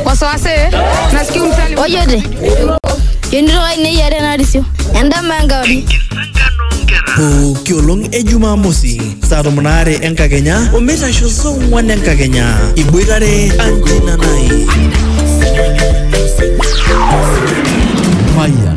wasiwasi nasikia umsali Ojote. Yonito ai neyiare narisio. Endama enkauri. pooki olong e jumamosi saa tomon aare enkakenya omeitasho saa ong'wan enkakenya iboitare anjinanai Mayan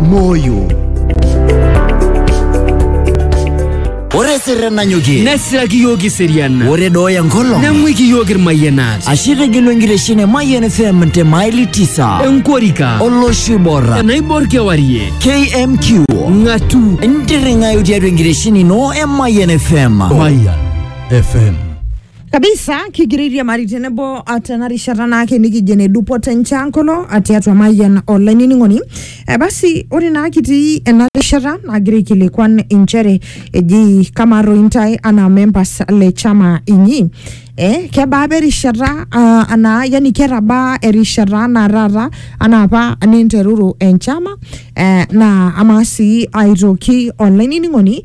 moyo ore sirre nanyokie nesiraki iyiook iserian ore dooya enkolong neng'uiki iyiook irmayianat ashe tegelu enkitesheni e Mayian FM te maili tisa enkorika olosho oibor enaibor kewarie KMQ ng'atu intirring'ayu tiatua enkitesheni ino e Mayian FM Mayan FM kabisa kigiriria mari tenebo ah, tena rishata naake nikijo ene dupoto enchankolo ah, tiatua mayian olainining'oni eh, basi ore naa kitii ena rishata nagira aikilikuan inchere eji kamaa toi intae anaa members le chama inyi eh, kebaa apa erishata ah, anaa yani ketabaa erishata anaa taata anaa apa ninteruru enchama eh, naa amaa sii aitoki olainining'oni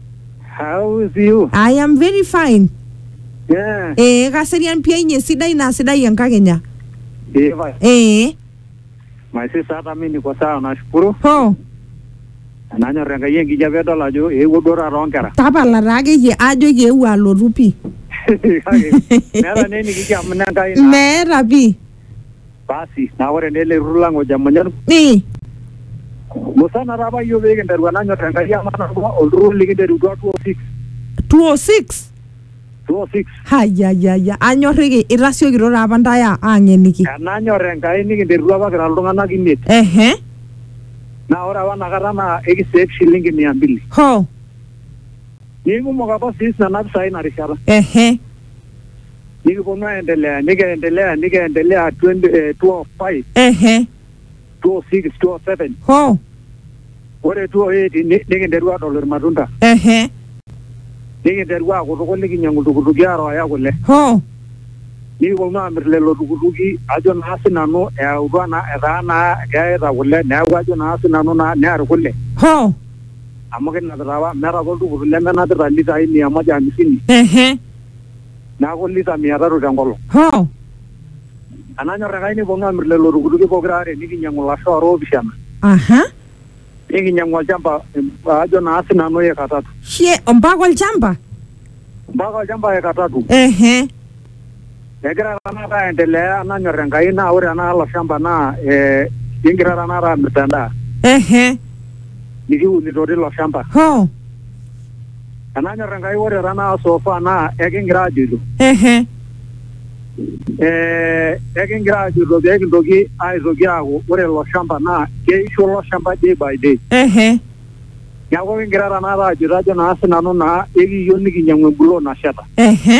How is you? I am very fine. Yeah. Ee kaserian pia inye sidai naa sidai enkakenya. Diva. Ee My sister hata mimi niko sawa nashukuru. ho Nanyor Enkai enkijape edol ajo eewuo duo taata oonkera. tapala taa akeyie ajoki eewuo alotu pii. Kake meeta naa enikijo amu ine Enkai naa. Meeta pii. Basi, naa ore naa ele turrur lang ojo emunyan Ii. musana taa apa iyiook pee kinteru enanyor Enkai emanarua olturrur likinterutua 206 206 206 hayayaya anyorriki itasiokito taa apa ntae a- aang'eniki enanyor Enkai nikinterutua apa kira iltung'anak imiet ehe naa ore apa inakata naa ekisave shilingi mia mbili ho nikumok apa siis nena pisai ina rishata ehe Nikiponu aendelea, nikiendelea, nikiendelea 20, eh, 12, 5, ehe 12, 6, 12, 7. ho Ore 12, 8 ni- nikinteru adol irmatunda. ehe Nikinteru akutuku nikinyang'u iltukutuki arooya kule. ho Nikiponu amir lelo tukutuki ajo naa sinanu eyautua naa etaa naa keyaita kule neeku ajo naa sinanu naa near kule. ho Amu kinapita apa meeta apa oltukutuk lemenapita litai mia moja hamsini. ehe neaku lita mia tatu te nkolong. Hoo! Enanyor Enkai nikipuonu aamir lelo tukutuki pokira aare nikinyiang'u ilasho aare oopishana. Aha. Nikinyiang'u olchamba ajo naa si nanu eka tatu. Shie, ompaka olchamba? Ompaka olchamba eka tatu. Ehe. Egira tenakata aendelea enanyor Enkai naa ore tenakata ilo shamba naa ee kigira tenakata aamirta endaa. Ehe. Nikiunito teilo shamba. Hoo! Enanyor Enkai ore tanaa sofa naa ekingira ajoito. Ehe. Eh, ekingira ajoito pee kintoki aitoki aaku ore ilo shamba naa keisho ilo shamba day by day. Ehe. Neaku ekingira tenakata ajoito ajo naa sinanu naa ekiiyieu nikinyiang'u empuloot nasheta. Ehe.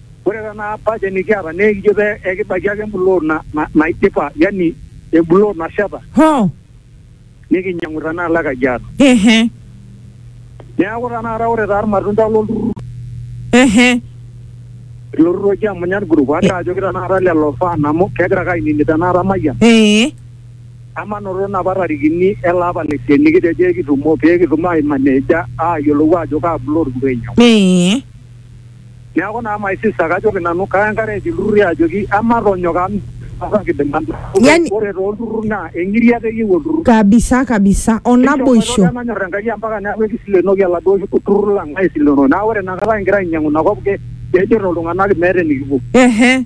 Ore tenaa budget nikiata naa ekijo pee ekibaiki ake embuloot na- na- naidipa yani embuloot nasheta Hoo. nikinyang'u tenaalo e Kajiado. Ehe. Neeku tenakata ore taa irmatunda lolturrur Ehe. ilo turrur oji Emunyat Group agira ajoki tenakata lelo fan amu kegira ake ainining tenakata Mayian Ee. emanoto inapa tarikini ele apa le isiet nikitejo ekitumo pee kitum aimaneja aayiolou aajo kaa buloot kipuo ainyang'u. Ee. Neaku naa my sister kajoki nanu kaya encourage ilturrurri ajoki ematonyok amu kidim Yani- ore tolturrur naa eng'iriata eyieu olturrur. kabisa kabisa o naboisho Enchom nanyor Enkai ampaka neaku ekisilenoki oladuo turrur lang aisilenoo. Naa ore inakata kigira ainyang'u ina kop ke- kejito iltung'anak meeta enikipuo. ehe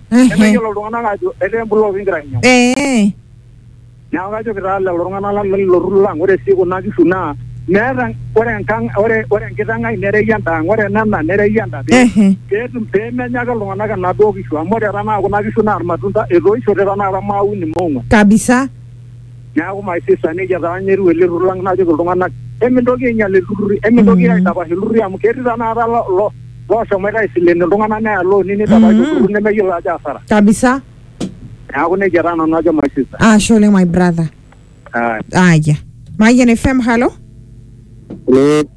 Ehe. nemeyiolo iltung'anak ajo etaa empuloot kigira ainyang'u Ee. neeku kajoki taa lelo tung'anak lang lelo turrur lang ore sii kuna kishu naa meeta ore enkang ore ore enkiteng ai nerei endaang ore enena nerei enda pee Ehe. peetum pemenya ake iltung'anak enaduo kishu amu ore tanakata kuna kishu naa irmatunda etoishote tanakata maauni moong'uan Kabisa. Neaku maisisa nejia taa ninye etiu ele turrur lang najoki iltung'anak emintoki ainyal ilturruri emintoki mm. aitapash ilturruri amu ketii tanakata lo looshomoita aisilen iltung'anak neya looni neitapash mm. olturrur nemeyiolo ajo asara kabisa neaku nejia taa nanu ajo my sister ashe oleng my brother aya mayian fm halo